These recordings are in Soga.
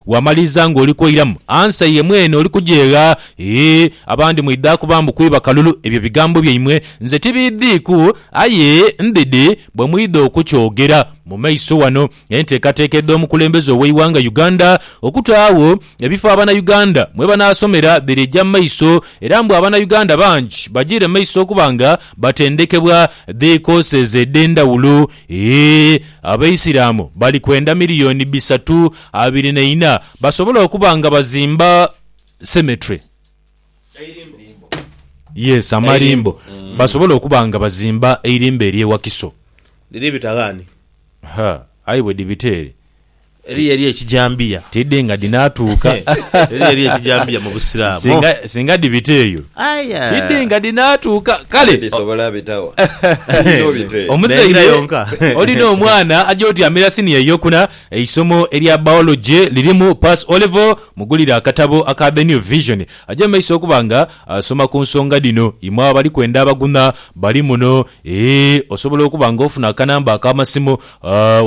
Wamaliriza nga oli kwoiramu ansa ye mwene oli kujeegha. Ee, abandi mwidhaaku ba mbu kwiba kalulu. Ebyo bigambo byaimwe nze tibiidhiiku. Aye ndhidhi bwe mwidha okukyogera mu maiso wano. Enteekateeka edh'omukulembeze ow'eighanga Uganda okutaagho ebifo Abanauganda mwe banaasomera dhiri eja mu maiso era mbu Abanauganda bangi bajiire mu maiso okuba nga batendekebwa dhikooseeze edh'endhawulo. Ee, Abaisiraamu bali kwenda miliyooni bisatu. Abiri na ina basobola okuba nga bazimba cemetery. Yes amarimbo basobola okuba nga bazimba eirimbo erye Wakiso. Dhiri bita ghani? Ha aye bwedhibita ere. Eriyo erye Kijambiya. Tidhi nga dhinatuuka. Eriyo erye Kijambiya mu busiramu. Singa singa dhibita eyo tidhi nga dhinatuuka kale. Dhisobola bita wa? Tidhi nobita eyo. Omuzaire olina omwana aja otyamira siniya eyokuna Eisomo erya Biology lirimu pass O-Level? Mugulire akatabo aka The New Vision aje mu maiso okuba nga asoma ku nsonga dhino. Imwe abali kwenda abagunha bali muno. Ee, osobola okuba nga ofuna akanamba ak'amasimu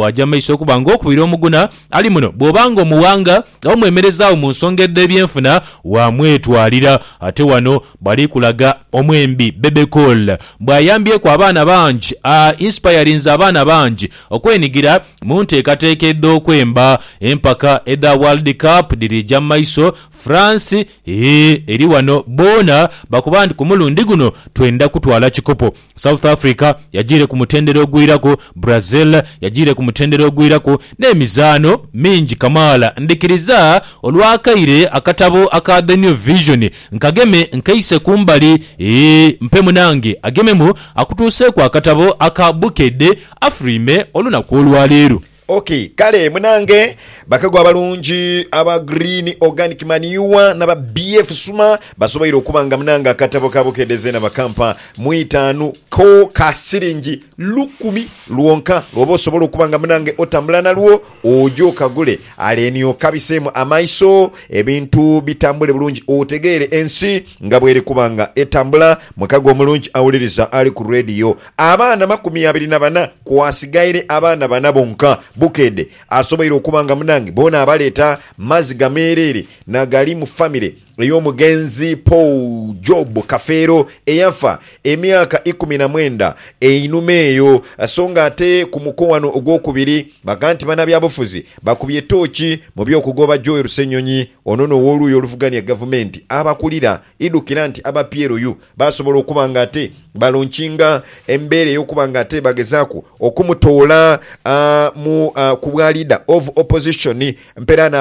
waaja mu maiso okuba nga okubira omugunha ali muno. Bw'oba nga omuwanga oba mwemerezaagho mu nsonga edh'ebyenfuna, waamwetwalira. Ate wano bali kulaga omwembi Bebe Cool bw'ayambyeku abaana bangi, a inspirinze abaana bangi okwenigira Mu nteekateeka edh'okwemba, empaka edha World Cup dhiriija mu maiso. France hhi eri wano boona bakoba nti ku mulundi guno twenda kutwala kikopo. South Africa yagiire ku mutendera ogwiraku, Brazil yagiire ku mutendera ogwiraku n'emizaano mingi kamaala. Ndhikiriza olw'akaire akatabo aka The New Vision nkageme nkeise ku mbali. Hhi mpe munange agememu akutuuseeku akatabo aka Bukedde. afulwime olunaku olwa leero. Ok kale munange bakagho abalungi aba Green Organic Manure naba BF Suma basoboire okuba nga munange akatabo ka Bukedde zeena bakampa mu itaanu ko ka siringi lukumi lwonka lwoba osobola okuba nga munange otambula nalwo oje okagule aleni okabiseemu amaiso ebintu bitambule bulungi otegeere ensi nga bweri kuba nga etambula mukago omulungi awuliriza ali ku Radio Abaana makumi abiri na bana, kwasigaire abaana bana bonka. Bukedhe asoboire okuba nga munange boona abaleeta mazi gameereere nagali mu famire ey'omugenzi Paul Job Kafeero eyafa emyaka ikumi na mwenda einhuma eyo. So nga ate ku muko wano ogwokubiri baga nti banabyabufuzi bakubye tooki mu by'okugoba Joel Ssenyonyi ono n'owoluuyi oluvugania gavumenti abakulira idhukira nti aba PLU Baasobola okuba nga ate balonkinga embeera ey'okuba nga ate bagezaaku okumutoola mu ku bwa Leader of Opposition. Mperaano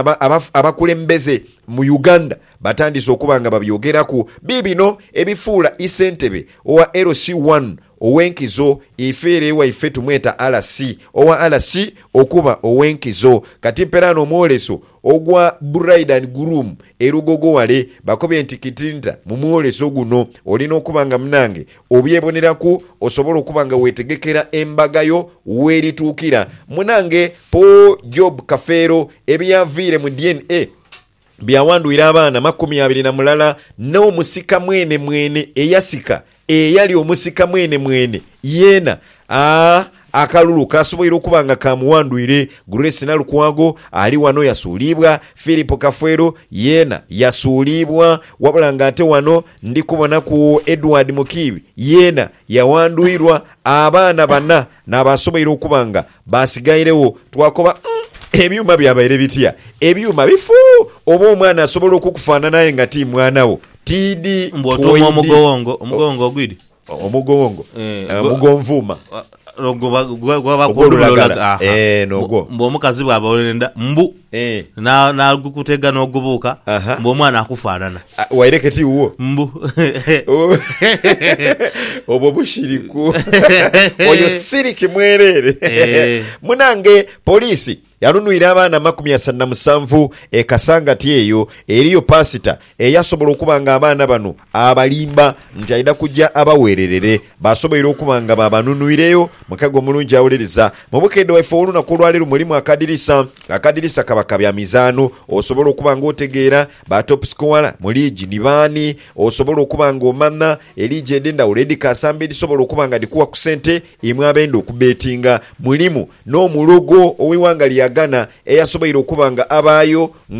abakulembeze mu Uganda batandise okuba nga babyogeraku. Biibino ebifuula isentebe owa LC One Ow'enkizo, ife ere waife tumweta RC. Owa RC okuba ow'enkizo. Kati mperaano omwoleso ogwa Bride and Groom e Lugogo wale, bakobye nti kitinta mu mwoleso guno olina okuba nga munange obyeboneraku osobole okuba nga wetegekera embaga yo werituukira. Munange Paul Job Kafeero ebyaviire mu DNA. byawandhwire abaana makumi abiri na mulala n'omusika mwenemwene eyasika, eyali omusika mwenemwene yeena. Aa, akalulu kaasoboire okuba nga kaamuwandhwire. Grace Nalukwago ali wano yasuuliibwa, Philip Kafwero yeena yasuuliibwa, wabula ng'ate wano ndi kubonaku Edward Mukiibi yeena yawandhwirwa. Abaana bana n'abaasoboire okuba nga Baasigairegho. Twakoba, Umm, ebyuma byabaire bitya? Ebyuma bifu! Oba omwana asobola okukufaanana aye nga ti mwana wo. Tiidi, Mbu otuuma Twaidi. omugowongo, omugowongo ogwidi? O- Omugowongo. Eh, Eh, gwe- Omugonvuuma. Ogw'olulagala. Ogw'olulagala. Aha. Eeh, n'ogwo. Mbu omukazi bw'aba olw'enda, mbu. Eeh. Na, n'agukutega n'ogubuuka, Aha. mbu omwana akufaanana. Ah, waireke ti wuwo? Mbu. Oh, obwo bushiriku. Oyo siriki mwereere. Eeh. Munange, poliisi yanunwire abaana amakumi asatu na musanvu e Kasangati eyo eriyo paasita Eyasobola okuba nga abaana bano abalimba nti aidha kuja abagheererere, basoboire okuba nga baabanunwireyo. Mukago omulungi awuliriza. Mu bukeedhe bwaife ow'olunaku olwa leero mulimu akadirisa. Akadirisa kaba ka bya mizaano. Osobola okuba nga otegeera ba top scorer mu liigi ni baani. Osobola okuba nga omanha eliigi edh'endhawulo edhikaasamba edhisobola okuba nga dhikuwa ku sente. Imwe abenda okubeetinga, mulimu n'omulogo ow'eighanga lya Ghana eyasoboire okuba nga abaayo nga.